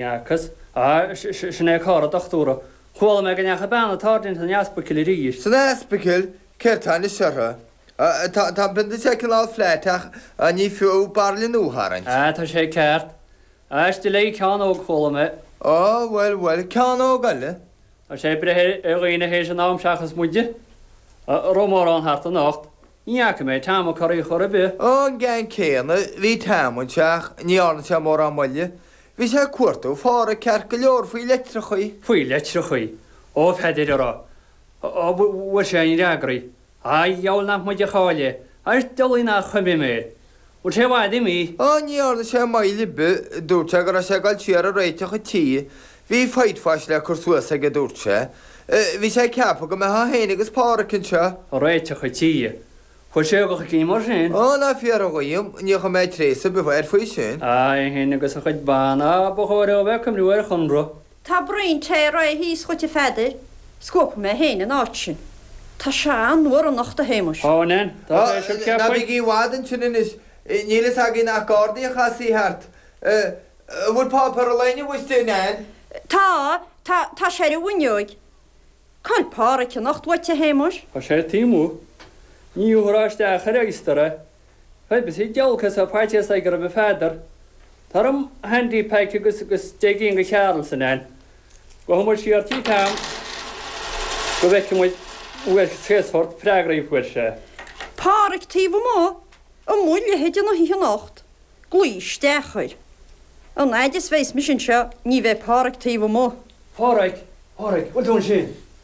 Nearchas, Aye, sin é carr an dochtúra. Chuala mé go ndeachaigh bean an tsáirsint san easpaicil arís. San easpaicil, céard tá anois uirthi? Tá an pionta seo cineál flat ach ní fiú barraille nua a tharraingt. Aye, tá sé ceart. Aiste léi ceann óg chuala mé. Ó, bhuel, bhuel, ceann óg eile. Tá sé ag breith ar dhaoine théis an am seachas muide a raibh mórán thart anocht. Ní fhaca mé Tom a Corraidh chor ar bith. Ó, an ceann céanna, bhí Tom anseo ach ní dhearna sé mórán moille. Bhí sé ag cuartú Pháraic ceart go leor faoi leitreachaí. Faoi leitreachaí? Ó, Pheadair, a raibh. Ó, bhfuair sé aon fhreagraí. Aidh, gheall nach muid a cháiligh, airt d'fhulaing nach chuimhim é. Bhfuil sé i bhfad imithe? Ó, ní dhearna sé moill ar bith, dúirt sé go raibh sé ag dul siar ag réiteach a tí, bhí whitewash le cur suas aige, dúirt sé. Bhí sé ag ceapadh go mbeitheá fhéin agus Páraic anseo. Ag réiteach a tí? Bhfuil sé ag dul chun cinn mar sin? Ó, ná fiafraigh dhíom, níor chuir mé tréas ar bith air faoi sin. A, é fhéin agus a chuid ban. Á, ba chóir dhó a bheith ag cuimhniú ar a chónra. Tá braon tae réidh thíos dhuit a Pheadair, scuabfaidh mé féin an áit sin. Tá sé an-fhuar anocht a Shéamuis. Ó, an ea? Tá, tá, sioc cheapfainn. Ná bígí i bhfad ansin anois, níl fhios againn nach gardaí a chasfaí thart. An bhfuil páipéar an lae inniu istigh, a Neil? Tá, tá, tá sé ar an bhfuinneoig. Cá bhfuil Páraic anocht uait a Shéamuis. Tá sé taobh amuigh. Ní othra isteach air, a Easter, a. Cuimsíonn giolcas a faitíos é go raibh a Pheadair tabhair dom handy pack agus deich gcinn de Charrolls ann go dté muid siar tí Tom go bhfeicfidh muid uaidh cén sórt freagraí a fuair sé. Pádraic taobh amuigh amuigh leithéid na hoíche anocht glaoigh isteach air an fhaid is a bheas mise anseo ní bheidh Pádraic taobh amuigh. Pádraic Pádraic bhfuil tú ansin?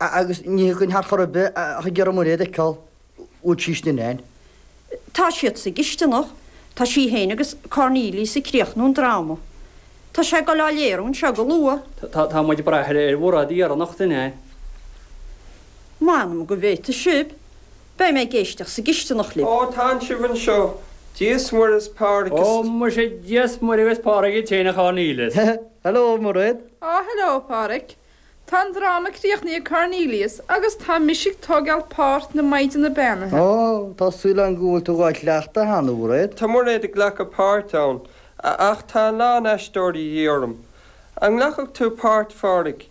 agus ní thiocfainn thart chor ar bith ach ag iarraidh Muiréad a fheiceáil bhfuil sí istigh a Neil. Tá siad sa gcisteanach, tá sí féin agus Cornelius ag críochnú an dráma. Tá sé ag dul á léiriú anseo go luath. Tá muid ag brath ar Mhuiréad dheireanach den oileán. M'anam go bhféadfadh sibh, beidh mé ag éisteacht sa gcisteanach libh. Ó, tánn sibh anseo, Dia's Muire 's Pádraig daoibh. Ó, muise, Dia's Muire agus Pádraig dhuit féin, a Chornelius. Hello, Muiréad. Ó, hello, Pádraig. Tá an dráma críochnaí ag Cornelius agus tá mise ag tógáil páirt na Maighdeana Beannaithe. Ó, tá súil agam go bhfuil tú dhá chleachtadh cheana, a Mhuiréad. Tá Muiréad ag glacadh páirt ann, a ach tá a lán aisteoirí de dhíth orm. An nglacfadh tú páirt, a Phádraig?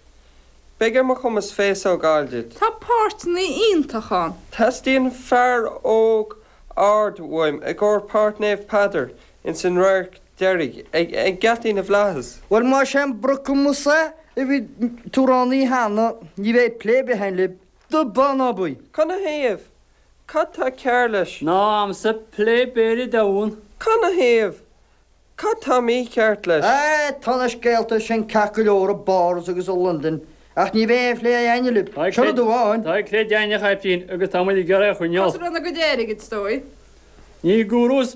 Beidh ar mo chumas féasóg a fháil duit. Tá páirteanna iontach ann. Teastaíonn fear óg ard uaim i gcomhair páirt Naomh Peadar Ins an radharc deiridh, ag geataí na bhFlaitheas. Bhuel, más é an brocamas a bhí tú roghnaithe cheana, ní bheidh plé ar bith againn libh. Do b'ann ab í! Canathaobh? Cad tá cearr leis? Nó am sa plé b'fhéidir domhan? Canathaobh? Cad tá mícheart leis? Aye, tá na scéalta sin ceart go leor i bPáras agus i Londain, ach ní bheidh aon phlé againn libh. Seo rud amháin. Tá cleith deimhneach ar pinn agus tá muid ag iarraidh a choinneáil. Cosúil lena gcuid airgid, is dóigh. Ní gúrús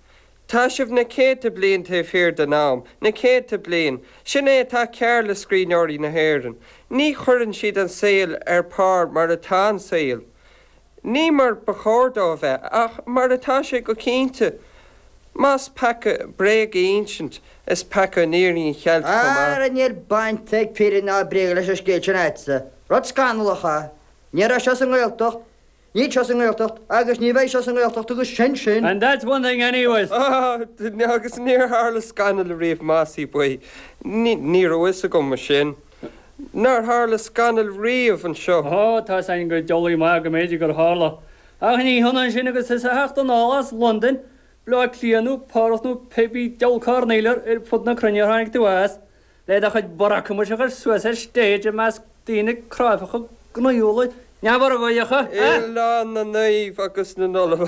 Tá sibh na céadta bliain taobh thiar den am, na céadta bliain. Sin é atá cearr le scríbhneoirí na hÉireann. Ní chuireann siad an saol ar pár mar atá an saol. Ní mar ba chóir dó a bheith, ach mar atá sé go cinnte. Más peaca bréag a insint, is peaca an fhírinne a cheilt chomh maith. Ara, níl baint ag fírinne ná bréag leis an scéal sin a'atsa. Rud scannalach é. Ní raibh seo sa nGaeltacht. Níl seo sa nGaeltacht agus ní bheidh seo sa nGaeltacht agus sin sin. And that's one thing anyways! Ahh, agus níor tharla scannal ariamh muise boy, ní raibh fhios agam mar sin nár tharla scannal riamh anseo. Ó, tá fhios a'inn go diabhlaí maith go mb'fhéidir gur tharla, ach ní hionann sin agus thusa a theacht anall as Londain, Bleá Cliath nó Páras nó pébí deabhal coirnéal ar fud na cruinne ar tháinig tú as. Le do chuid brocamais a chur suas ar stage i measc daoine cráifeacha gnaíúla neamhurchóideacha, a. Oileán na Naomh agus na nOllamh.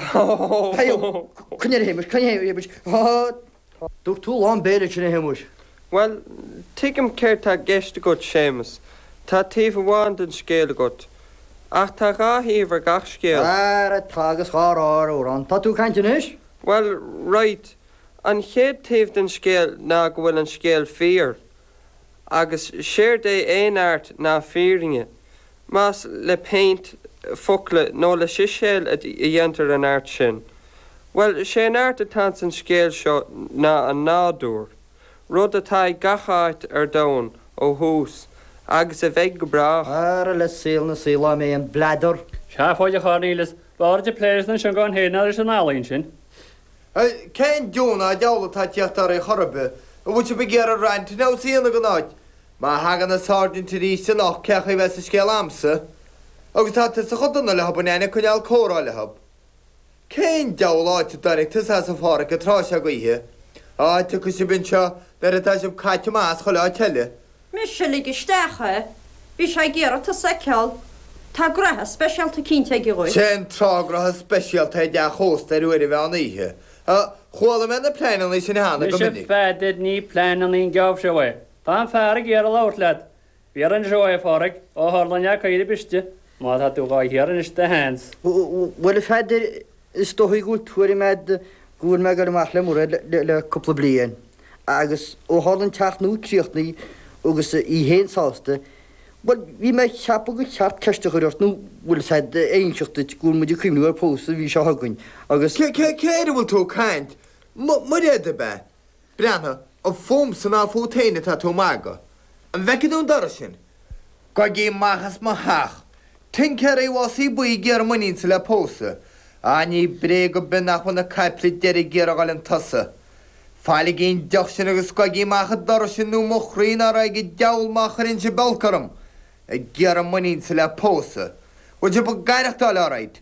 Dúirt tú lán béil ansin a Shéamuis. Bhuel, tuigim céard tá i gceist agat Séamus, tá taobh amháin den scéal agat, ach tá dhá thaobh ar gach scéal. Ara tá agus dhá rá ar amhrán. Tá tú ag caint anois? Bhuel, raight. An chéad taobh den scéal ná go bhfuil an scéal fíor, agus séard é aon art ná fírinne, más le péint, focla nó le siséal a dhéantar an art sin. Bhuel, sé an art atá ins an scéal seo ná an nádúr, rud atá i ngach áit ar domhan ó thús, agus a bheidh go brách. Ara le saol na saol áiméan. Bladar. Seafóid, a Chornelius. B'fhearr dhuit plé leis na sióga féin ná leis an ealaín sin. Cén deamhan ná deabhal atá ag teacht oraibh chor ar bith? An bhfuil sibh ag iarraidh ranting house a dhéanamh den áit? Má thagann an Sáirsint aríst anocht cé chaoi bheas an scéal a'msa? Agus tá tusa chomh dona leothub an einne coinneáil comhrá leothub. Cén deabhal áit a dtáinic tusa as a Pháraic an tráth seo d'oíche? Á, tiocfaidh sibh anseo nuair atá sibh caite amach as chuile áit eile. Mise a lig isteach é. Bhí sé ag iarraidh tusa a fheiceáil. Tá graithe speisialta cinnte aige dhuit. Sé an tráth graithe speisialta i dteach ósta ar uair an mheán oíche. Chuala mé na pleanannaí sin cheana go minic. Muise a Pheadair ní pleanannaí an geábh seo é. Tá an fear ag iarraidh labhairt leat. Bhí orainn seo, a Phádraig, ó tharla an leac oighre briste, má tá tú dhá hiarraidh anois do sheans. Bhuel a Pheadair, Is dóigh go bhfuil tuairim agat go bhfuil mé ag goil amach le Muraed le cúpla bliain, agus ó tharla an teach nua críochnaithe agus í féin sásta, bhuel, bhí mé ag ceapadh gur cheart ceist a chur ort, nó bhfuil a fhios a'd é a inseacht duit go bhfuil muid ag cuimhneamh ar phósadh an mhí seo chugainn, agus. Cé air a bhfuil tú ag caint? Muraed, ab ea? Breathnaigh, an fúmsa ná fút féin atá tú ag magadh? An bhfeiceann tú an doras sin? Gabhaigí amach as mo theach? Tincéaraí Mhosaí Buí ag iarraidh m'iníonsa le pósadh. Á, ní bréag ar bith nach bhfuil na caiple deiridh ag iarraidh a dhul chun tosaigh. Fágaigí an deoch sin agus gabhaigí amach an doras sin nó mo chroí ná raghaidh an deabhal má chuireann sibh olc orm. Ag iarraidh m'iníonsa le pósadh. Bhfuil sibh ag aireachtáil alright?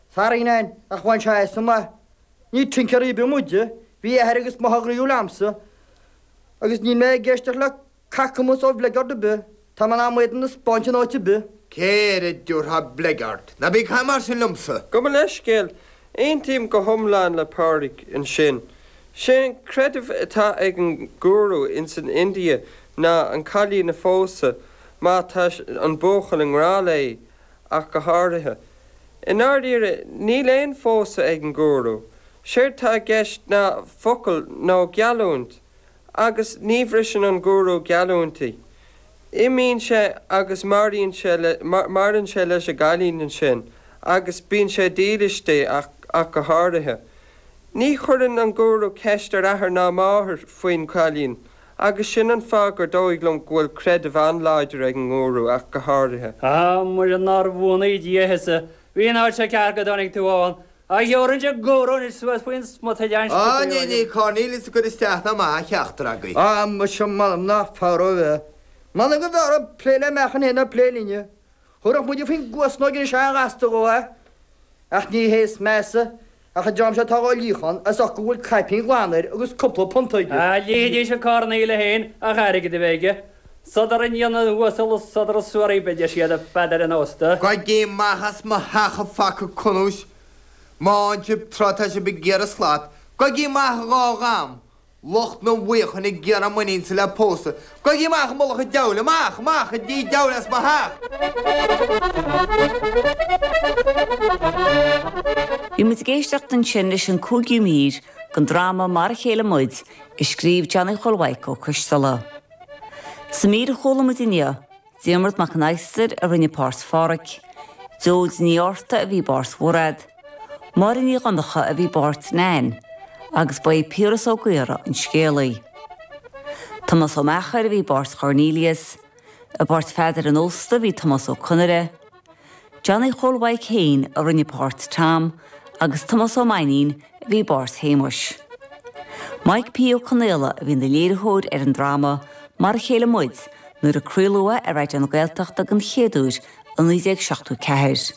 Saarinen, ach bhain sé as an aith. Ní tincéaraí ar bith muide, bhí athair agus máthair gnaíúil a'msa, agus níl mé ag éisteacht le cacamas ó bhligeard ar bith, tá mé in ann m'éadan a spáint in áit ar bith. Cé air a dtabharfá bligeard? Ná bí ag caint mar sin liomsa! Gabh mo leithscéal, aontaím go hiomlán le Pádraig ansin. Sé an creideamh atá ag an ngúrú ins an India ná an cailín a phósadh má tá an buachaill i ngrá léi, ach go háirithe. I ndáiríre, níl aon phósadh ag an ngúrú. Séard tá i gceist ná focal nó geallúint, agus ní bhriseann an gúrú geallúintí. Imíonn sé agus maraíonn sé le, maireann sé leis an gcailín ansin agus bíonn sé dílis di ach, ach go háirithe. Ní chuireann an gúrú ceist ar athair ná máthair faoin gcailín Agus sin an fáth gur dóigh liom go bhfuil creideamh an-láidir ag an nGúrú ach go háirithe. A muise nár bhuanaí Dia thusa, bhí an áit seo ceart go dtáinig tú ann, a ghiorraíonn an Gúrú anois suas faoin smut a lean Á, scríobhaí ní, níl Cornelius ag cur isteach ná amach ar cheachtar agaibh. Á, muise, m'anam nach fearr dhó a bheith. M'anam go mb'fhearr dhó plé le meachain féin ná plé linne. Thabharfadh muide faoin gcuasnóg anois sách gasta dhó é, ach ní hé is measa. Ach an dream seo atá dhá líochán, as ucht go bhfuil caipín ghlan air agus cúpla punt aige. Lífidís an carn aoiligh féin ach airgead a bheith aige. Sodar i ndiaidh na n-uasal an sodar is suaraí ba deas iad do Pheadar an Ósta. Gabhaigí amach as mo theach a phaca cunúis, má fhann sib tráth tá sib ag iarraidh slat, gabhaigí amach dhá dham, lucht na bhfaochain ag iarraidh m'iníonsa le pósadh, gabhaigí amach i mullach an deabhail, amach, amach i dtigh deabhail as mo theach. Bhí muid ag éisteacht ansin leis an cúigiú mír den dráma Mar a Chéile Muid, a scríobh Johnny Chóil Mhaidhc Ó Coisteala. Sa mír a chuala muid inniu, Diarmuid Mac an Adhastair a rinne páirt Pháraic, Joe Ní Fhátharta a bhí i bpáirt Mhuraed, Máire Ní Dhonnacha a bhí i bpáirt Nain agus ba é Piaras Ó Gaora an scéalaí. Tomás Ó Meachair a bhí i bpáirt Chornelius. I bpáirt Pheadair an Ósta bhí Tomás Ó Conaire. Johnny Chóil Mhaidhc féin a rinne páirt Tom agus Tomás Ó Mainnín a bhí i bpáirt Shéamuis. Maidhc P. Ó Conaola a bhí ina léiritheoir ar an dráma Mar a chéile muid nuair a craoladh é ar Raidió na Gaeltachta den chéad uair i 1974.